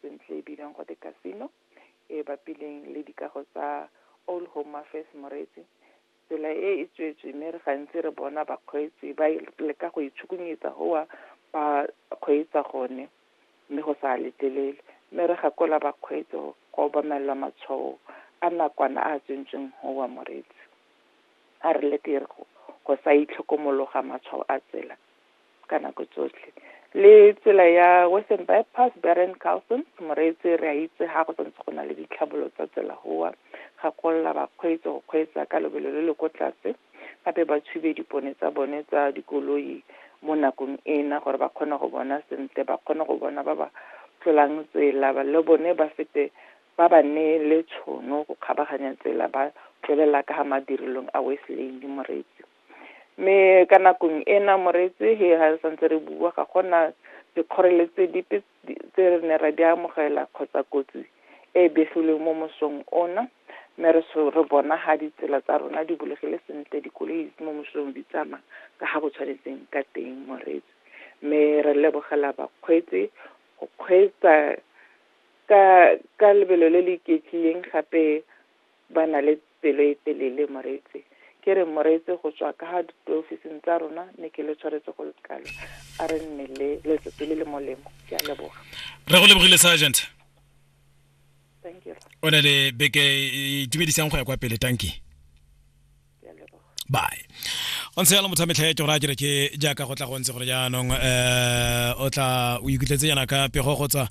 sentle e bidiwang gote casino e bapileng le dikago tsa Old Home Affairs Moretsi. Tsela e e tswetswe mme re gantsi re bona bakgweetsi ba leka go itshukunyetsa goa ba kgweetsa gone mme go sa letlelele. Mme re gakola bakgweetsi go obamelela matshwao a nakwana a a tsentsweng goa Moretsi. A re leke go sa itlhokomologa matshwao a tsela ka nako tsotlhe le tsela ya western bypass beren carlson moreetse re a itse ga go santse go na le ditlhabolo tsa tsela goa ga kolla bakgweetsi go kgweetsa ka lobelo le le ko tlase gape ba tshube dipone tsa bone tsa dikoloi mo nakong ena gore ba kgone go bona sentle ba kgone go bona ba ba tlolang tsela le bone ba fete ba ba ne le tshono go kgabaganya tsela ba tswelela ka ga madirelong a west lane moreetsi mme ka nakong ena moretse he ha re santse re bua ga gona dikgoreletsi dipe tse re ne ra di amogela kgotsa kotsi e e begilweng mo mosong ona mme re re bona ga ditsela tsa rona di bulegile sentle dikoloi mo mosong di tsamaya ka ga go tshwanetseng ka teng moretse mme re lebogela bakgweetsi go kgweetsa ka ka lebelo le le iketlileng gape Ba na le pelo e telele Moretse. Ke re Moretse go tswa ka diofising tsa rona ne ke le tshwaretse go le kalo. A re nne le letsatsi le le molemo. Ke a leboga. Re go lebogile Sergeant. Thank you. O ne le beke e itumedisang go ya kwa pele. Tanki. bye go ntse yalo motho a metlha ke gore a kere ke jaaka go tla go ntse gore jaanong um o tla o ikutletse yana ka pego go tswa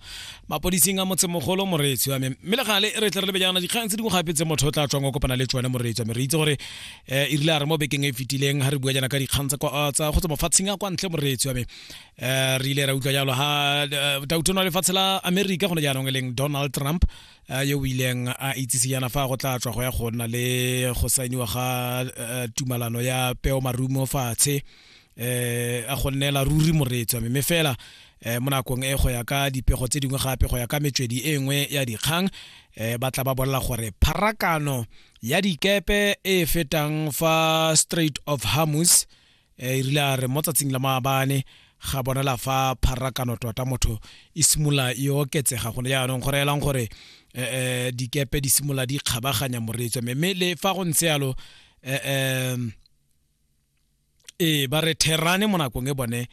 mapodising a motsemogolo moreetsi wa me mme le gale re tle re lebe jaana dikgang tse dingwe gape tse motho o tla tswang o kopana le tsone moreetsi wa me re itse gore um e rile a re mo bekeng e, e fetileng ga re bua jaana ka dikgang tsa go tswa mofatsheng a kwa ntle moreetsi wa me um re ile ra utlwa jalo ga dautono lefatshe la america gone jaanong e leng donald trump yo o ileng a itsise yana fa go tla tswa go ya go nna le go sainiwa ga eh, tumalano ya peo marumo fatshe eh a go nnela ruri moretswa mme fela eh mo nakong e go ya ka dipego tse dingwe gape go ya ka metswedi e nngwe ya dikgang eh ba tla ba bolela gore pharakano ya dikepe e fetang fa Strait of Hormuz e rile a re mo tsatsing la maabane ga bonala fa pharakano tota motho e simolola e oketsega gone jaanong go reelang gore um dikepe di simolola di kgabaganya moreetswa mme mme le fa go ntse yalo um ee ba re therane mo nakong e bone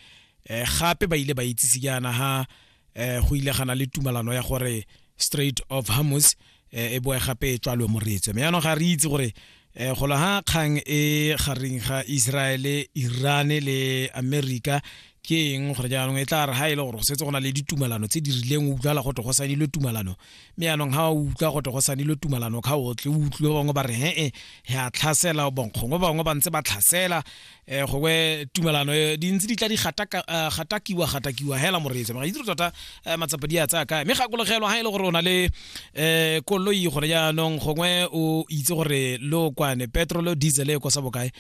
um gape ba ile ba itsise jaana ha eh go ile gana le tumalano ya gore straight of hamus eh, e boe gape e tswalwe moretswe mme yaanong ga re itse gore eh golo ha kgang e gareng ga Israel Iran le America ke eng gore jaanong e tla re ha e le gore go setse go na le ditumalano tse di rileng o utlwala go tle go sanile tumalano mme yaanong ha o utlwa go tle go sanile tumalano ka o tle o utlwe bangwe ba re he-e ya tlhasela bonkgongwe bangwe ba ntse ba tlhasela eh gongwe tumelano eh, di ntse di tla di gataka- eh, gatakiwa gatakiwa hela moreetsa mara itse tota eh, matsapa di a tsaya kae mme gakologelwa ga e le gore o na le um koloi gone jaanong gongwe o itse gore lo kwane petrolo diesel e kosa bokae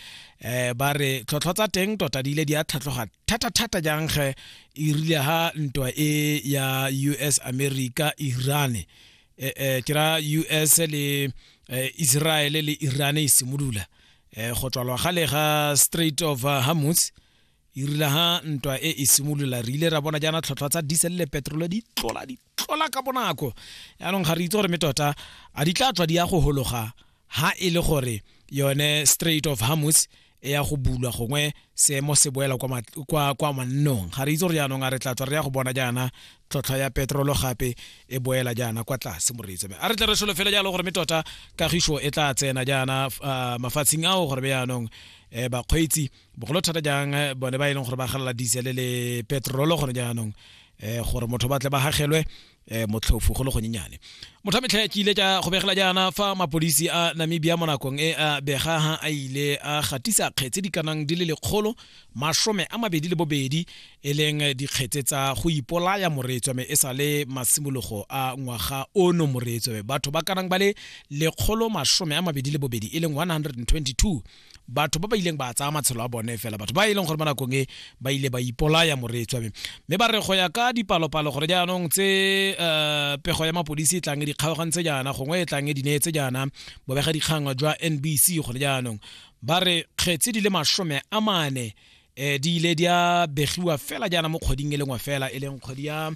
um ba re tlhotlhwa tsa teng tota di ile di a tlhatlhoga thata-thata jang ge e rile ga ntwa e ya u s america irane um ke ra u s le eh, israele le irane e simolola eh, go tswalwa gale ga straight of uh, hamus e rile ha ntwa e e simolola re ile ra bona jaana tlhotlhwa tsa diesel le petrole di tlola di tlola ka bonako yaanong ga re itse gore me tota a di tla tswa di ya go hologa ha e le gore yone straight of hamus e ya go bulwa gongwe seemo se boela kwa mannong ga re itse gore jaanong a re tla tswa re ya go bona jaana tlhotlhwa ya petrolo gape e boela jaana kwa tlase moreetsa a re tle re solo fela jalo gore me tota kagiso e tla tsena jaana ah, mafatsheng ao gore be yaanong um bakgweetsi bogolo thata jang eh, bone ba e leng gore ba galela diesel le petrolo gone jaanong um gore motho ba tle ba gagelwe um motlhofu go le gonyenyane motho a metlha ke ile ka go begela jaana fa mapodisi a namibia mo nakong e a bega ha a ile a gatisa kgetse di kanang di le lekgolo masome a mabedi le bobedi e leng dikgetse tsa go ipolaya moretswame e sa le masimologo a ngwaga ono moretswame batho ba kanang ba le lekgolo masome a mabedi le bobedi e leng 122 batho ba ba ileng ba tsaya matshelo a bone fela batho ba e leng gore mo nakong e ba ile ba ipolaya moretswame mme ba re go ya ka dipalopalo gore jaanong tse um pego ya mapodisi e tlang e dikgaogantse jaana gongwe e tlang e dineetse jaana bobega dikgang jwa nbc gone jaanong ba re kgetse di le masome a mane um di ile di a begiwa fela jaana mo kgweding e lengwe fela e leng kgwedi ya um